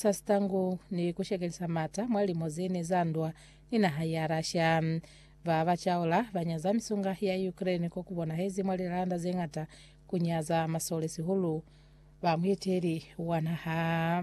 sa sitangu ni ku shekelisa mata mwa limo ze ne za ndwa ni naha ya Russia. Ba ba caula ba nyaza misunga ya Ukraine ko ku bonahezi mwa lilanda ze ñata ku nyaza masole sihulu ba mueteli wa naha.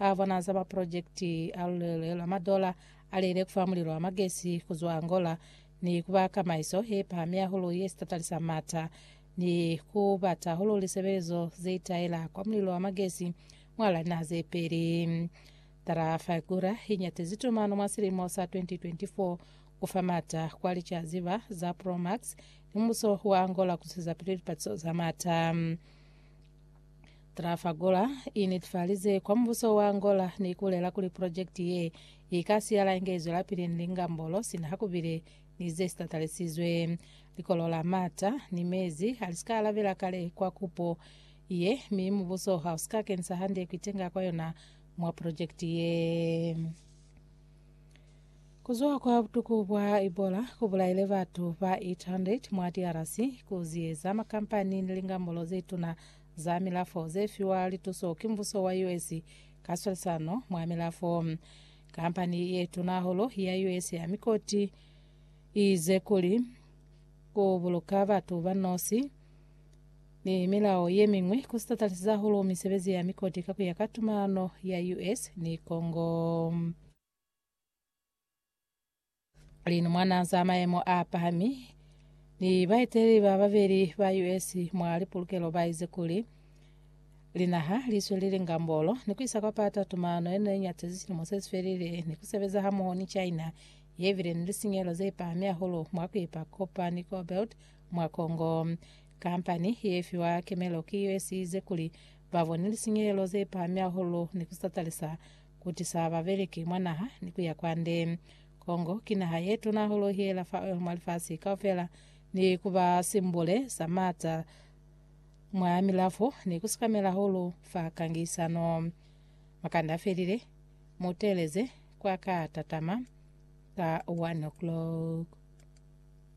A bona za ma pulojekiti a lulele lwa madola a lele ku fa mulilo wa magesi ku zwa Angola ni ku ba kamaiso ye pahami hahulu ye sitatalisa m'ata, ni ku bata hahulu lisebelezo ze itaela kwa mulilo wa magesi mwal'a linaha ze peli. Trafigura i nyatezi tumano mwa silimo sa 2024 ku fa m'ata kwa licaziba za Promax ni mubuso wa Angola ku zwezapili lipatiso za m'ata. Trafalgora i netifalize kwa mubuso wa Angola ni kulela kuli projekiti ye i ka siyala inge i zwelapili ni lingambolo sina ha ku bile ni ze si tatalisizwe. Likolo la mata ni mezi ha li si ka alabela kale kwa kupo ye, mi mubuso ha u si ka kenisa hande ku itenga kwa yona mwa projekiti ye. Kuzwa kwa butuku bwa Ebola kubulaile batu ba 800 mwa DRC kuziyeza makampani ni lingambulo zetuna za milafo zefiwa lituso ki mbuso wa US ka swalisano mwa milafo. Kampani yetuna hahulu ya US ya mikoti iize kuli kubuluka batu banosi ni milao yemiñwi ku sitatalisi hahulu misebezi ya mikoti ka kuya ka tumalano ya US ni Congo. Linumwana za maemo a pahami ni baeteleli ba babeli ba US mwa lipulukelo baize kuli, Linaha liswelile ngambolo ni kuisa kwa pata tumalano ye ne iñatezi silimo sesifelile ni kusebeza hamoho ni China yebile ni lisinyehelo zepahami hahulu mwa kuipa kopa ni cobalt mwa Congo. Kampani ye fiwa kemelo ki yo ye size kuli ba bone lisinyelelo ze pahami hahulu ni ku satalisa ku tisa babeleki mwa naha ni ku ya kwande. Congo ki naha ye tuna hahulu hela fa oil mwa lifasi kaufela ni ku ba simbule sa maata mwa milafo ni ku sikamela hahulu fa kangisano. Makande a felile, mu teeleze kwa ka tatama ka 1:00.